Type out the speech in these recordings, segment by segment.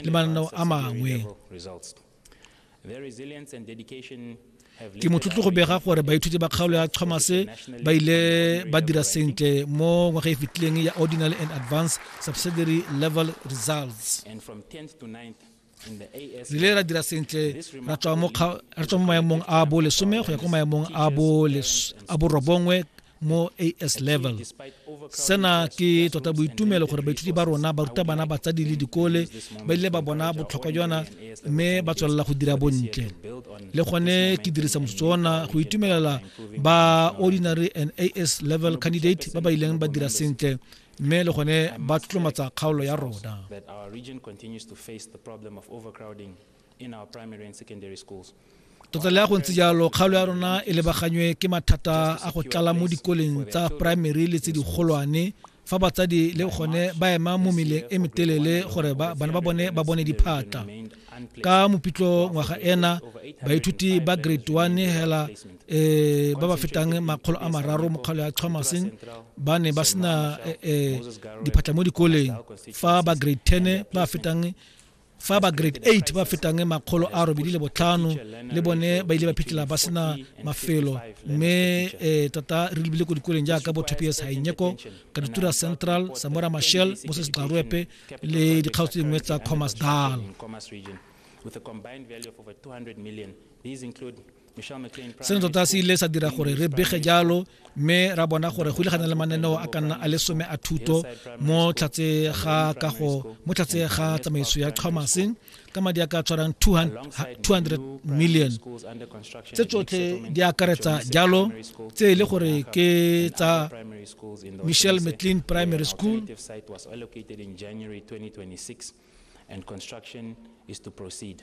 le mananeo a mangwe ke motlotlo go bega gore baithuti ba kgaolo ya thomas ba ile ba dira sentle mo ngwaga e fetileng ya ordinary and advanced subsidiary level results re ile ra dira sentle ra tswa mo maemong a bo lesome go ya ko maemong a bo robongwe mo as level sena ke tota boitumelo gore baithuti ba rona ba ruta bana batsadi le dikole ba ile ba bona botlhokwa jona mme ba tswelela go dira bontle le gone ke dirisa motsotso ona go itumelela ba ordinary and as level candidate ba ba ileng ba dira sentle mme le gone ba tlotlomatsa kgaolo ya rona Tota le a go ntse jalo, kgaolo ya rona e lebaganywe ke mathata a go tlala mo dikoleng tsa primary le tse digolwane fa batsadi le gone ba ema mo meleng e metelele gore bana ba bone ba bone diphatla ka mopitlo ngwaga ena baithuti ba grade 1 hela um ba ba fetang makgolo a mararo mo kgaolo ya thomaseng ba ne ba sena um diphatla mo dikoleng fa ba grade 10 ba fetang fa ba grade 8 ba fetang makgolo a robedi le botlhano le bone ba ile ba phitlhela ba sena mafelo mme um tota re lebile ko dikoleng jaaka bo tps hainyeko kaditura central samora mashel moses gxaroepe le dikgaotso tse dingwe tsa commerce dal seno tota se ile sa dira gore re bege jalo mme ra bona gore go ile ga na le mananeo a ka nna a le some a thuto mo tlhatse ga kago mo tlhatse ga tsamaiso ya chomase ka madi a ka tshwarang 200 million tse tsotlhe di akaretsa jalo tse e le gore ke tsa michelle mclean primary school and construction is to proceed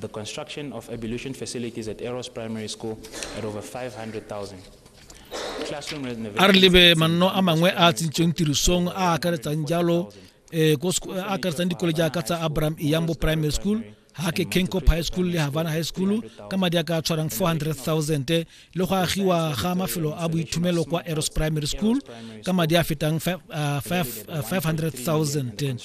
The construction of ablution facilities at Eros Primary School at over 500,000. Classroom renovations. a re lebe manno a mangwe a a tsentsweng tirisong a a akaretsang jalo eh, ko seko- a akaretsang dikole jaaka tsa abraham iyambo primary school hake kenkop high school le havana high school ka madi a ka tshwarang 400000 le go agiwa ga mafelo a boithomelo kwa eros primary school ka madi a fetang 500000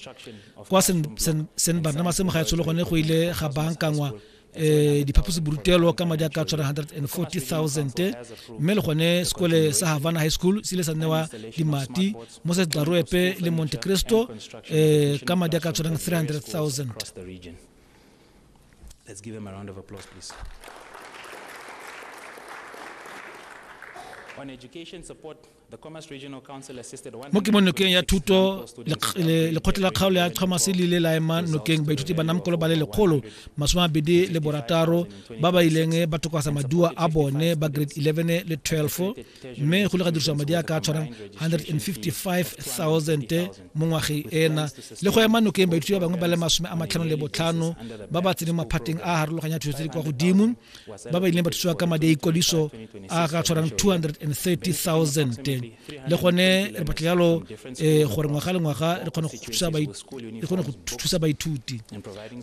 kwa st barnabas mo ga tsholo gone go ile ga bankangwa eh diphaposiborutelo ka madi a ka tshwara 140000 mme le gone sekole sa havana high school se ile sa newa dimati mo se tlaroepe le monte cristo eh ka madi a ka tshwarang 300000 Let's give them a round of applause, please. mo ke mo nokeng ya thuto lekgotla la kgaolo ya thomas le ile la ema nokeng baithuti ba namkolo ba le lekgolo masome a bedi le borataro ba ba ileng ba tokwasa maduwa a bone ba grade 11 le 12 mme go le ga dirisiwa madi a ka tshwarang 155000 mo ngwageng ena le go ema nokeng baithuti ba bangwe ba le masome a matlhano le botlhano ba ba tseneng maphateng a harologanya thuso tse di kwa godimo ba ba ileng ba thusiwa ka madi a ikwadiso a ka tshwarang 230000 le gone re batla jalo um gore ngwaga le ngwaga re kgone go thusa baithuti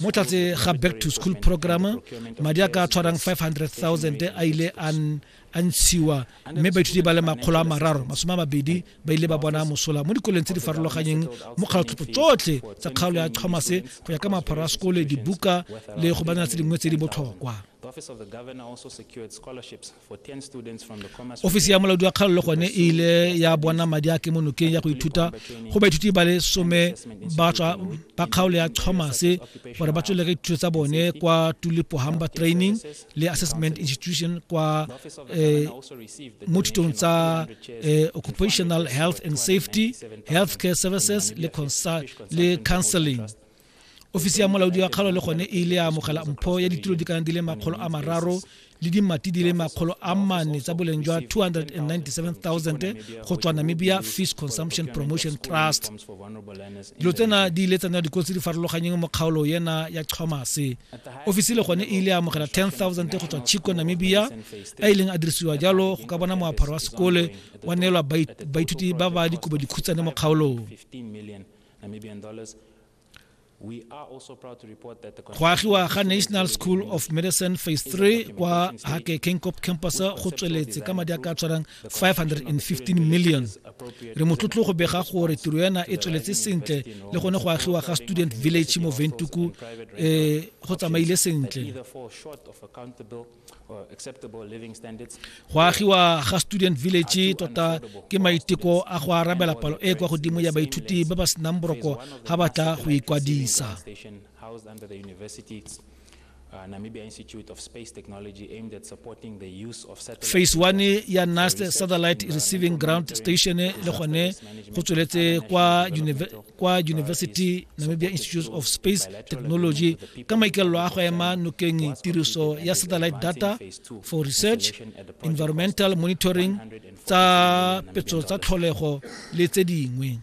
mo tlatse ga back to school program madi a ka tshwarang 500000 a ile a a ntshiwa mme baithuti ba le makgolo a mararo masome a mabedi ba ile ba bona mosola mo dikoleng tse di farologanyeng mo kgaotlhopho tsotlhe tsa kgaolo ya tlhomase go ya ka mapharo a sekole dibuka le go banela tse dingwe tse di botlhokwa ofisi ya molaodi wa kgaolo le gone e ile ya bona madi a kemonokeng ya go ithuta go baithuti ba le some ba tswa ba kgaolo ya thomas gore ba tswelele ka dithuto tsa bone kwa tulipo hamba training le assessment institution kwa eh, mo thutong tsa eh, occupational health and safety healthcare services le, le counseling ofisi ya molaodi wa kgalo le gone e ile ya amogela mpho ya ditulo di kana di le makgolo a mararo le dimati di le makgolo a mane tsa boleng jwa 297,000 go tswa namibia fish consumption promotion trust dilo tsena di ile tsa nna dikolo tse di farologanyeng mo kgaolo yena ya chomase ofisi le gone e ile ya amogela 10000 go tswa chico namibia a e ileng a dirisiwa jalo go ka bona moaparo wa sekole wa neelwa baithuti ba ba dikobo dikhutsane mo kgaolong go agiwa ga national school of medicine phase 3 kwa hake kenkop campus go tsweletse ka madi a ka tshwarang 515 million re motlotlo go bega gore tiro yana e tsweletse sentle le gone go agiwa ga student village mo ventuku um go tsamaile sentle go agiwa ga student village tota ke maiteko a go arabela palo e kwa godimo ya baithuti ba ba senang boroko ga ba tla go ikwadisa Uh, Namibia Institute of Space Technology aimed at supporting the use of satellite. Phase 1 ya NAST satellite receiving ground station le gone go tsweletse kwa kwa University Namibia Institute of Space Technology ka maikalelo a go ema nokeng tiriso ya satellite data for research, environmental monitoring, tsa petso tsa tlholego le tse dingwe.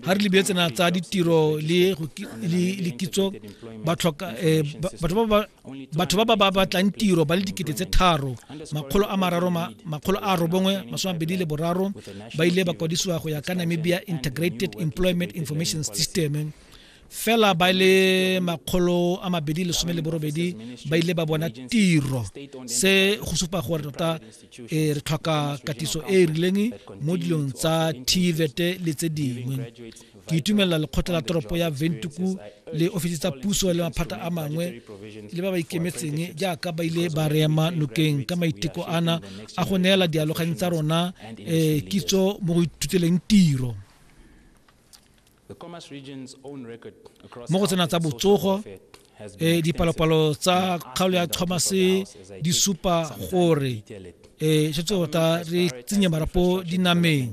ga re lebile tsena tsa ditiro le kitso eh, batho ba ba batlang tiro ba le dikete tse tharo makgolo a mararo makgolo a robongwe masome mabedi le boraro ba ile ba kwadisiwa go ya ka namibia integrated employment information system fela ba le makgolo a mabedi lesome le borobedi ba ile ba bona tiro se go supa gore tota e re tlhoka katiso e e rileng mo dilong tsa tvet le tse dingwe ke itumelela lekgotla la toropo ya ventuku le ofisi tsa puso le maphata a mangwe le ba ba ikemetseng jaaka ba ile ba reema nokeng ka maiteko ana a go neela dialoganyi tsa rona um kitso mo go ithuteleng tiro mo go tsena tsa botsogo e dipalopalo tsa kgaolo ya thomas di supa gore e setse tota re tsenye marapo dinameng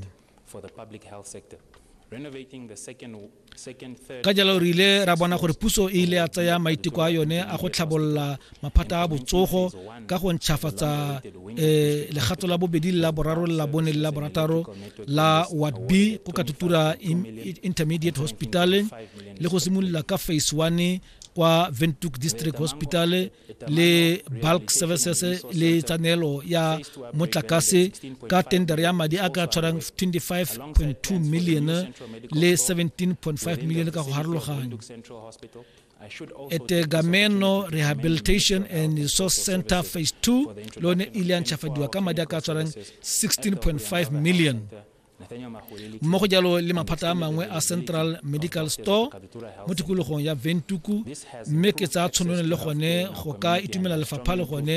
ka jalo re ile ra bona gore puso e ile ya tsaya maiteko a yone a go tlhabolola maphata a botsogo ka go ntšhafatsa um eh, legato la bobedi le la boraro le la bone le la borataro la ward b go ka tutura intermediate hospital le go simolola ka phase one kwa ventuk district hospital le bulk services le tsanelo ya motlakase ka tender ya madi a ka tshwarang 25.2 million le 17.5 million ka go harologanya Etegameno Rehabilitation and Resource Center Phase 2 lone ile a ntšhafadiwa ka madi a ka tshwarang 16.5 million mo go jalo le maphata a mangwe a central medical store mo tikologong ya ventuku mme ke tsaya tshwanelo le gone go ka itumela lefapha le gone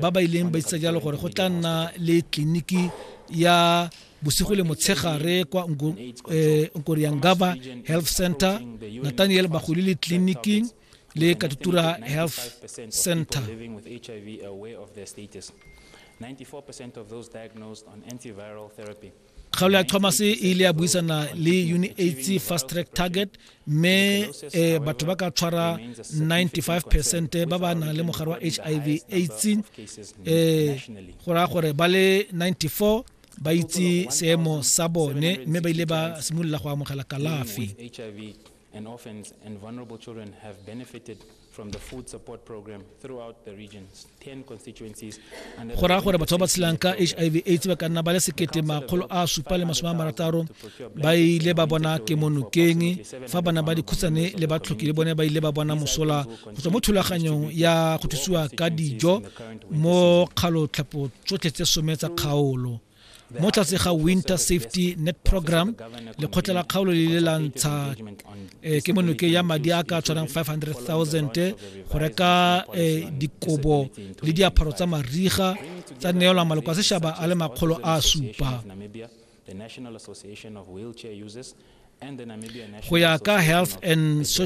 ba ba ileng ba itsa jalo gore go tla nna le tleliniki ya bosigo le motshegare kwa eh, nkoriangaba health center nathaniel bagodi le tleliniking le katutura health center kgaolo ya thomas e ile ya buisana le unaids fast track target mme eh, batho ba ka tshwara 95 percent ba ba nang le mogare wa hiv aids eh, go raya gore ba le 94 ba itse seemo sa bone mme ba ile ba simolola go amogela kalafi and orphans and vulnerable children have benefited from the food support program throughout the region's 10 constituencies go raya gore batho ba ba tshelang ka hiv aids ba ka nna ba le sekete makgolo a supa le masome a marataro ba ile ba bona kemonokeng fa bana ba dikhutshane le batlhoki le bone ba ile ba bona mosola go tswa mo thulaganyong ya go thusiwa ka dijo mo kgalotlhapo tsotlhe tse some tsa kgaolo mo tlase ga winter safety net program lekgotla la kgaolo le le lantsha eh, ke monoke ya madi a ka tshwanang 500000 go reka eh, dikobo le diaparo tsa mariga tsa neelwa maloko a sešaba a le makgolo a supa go ya ka health and social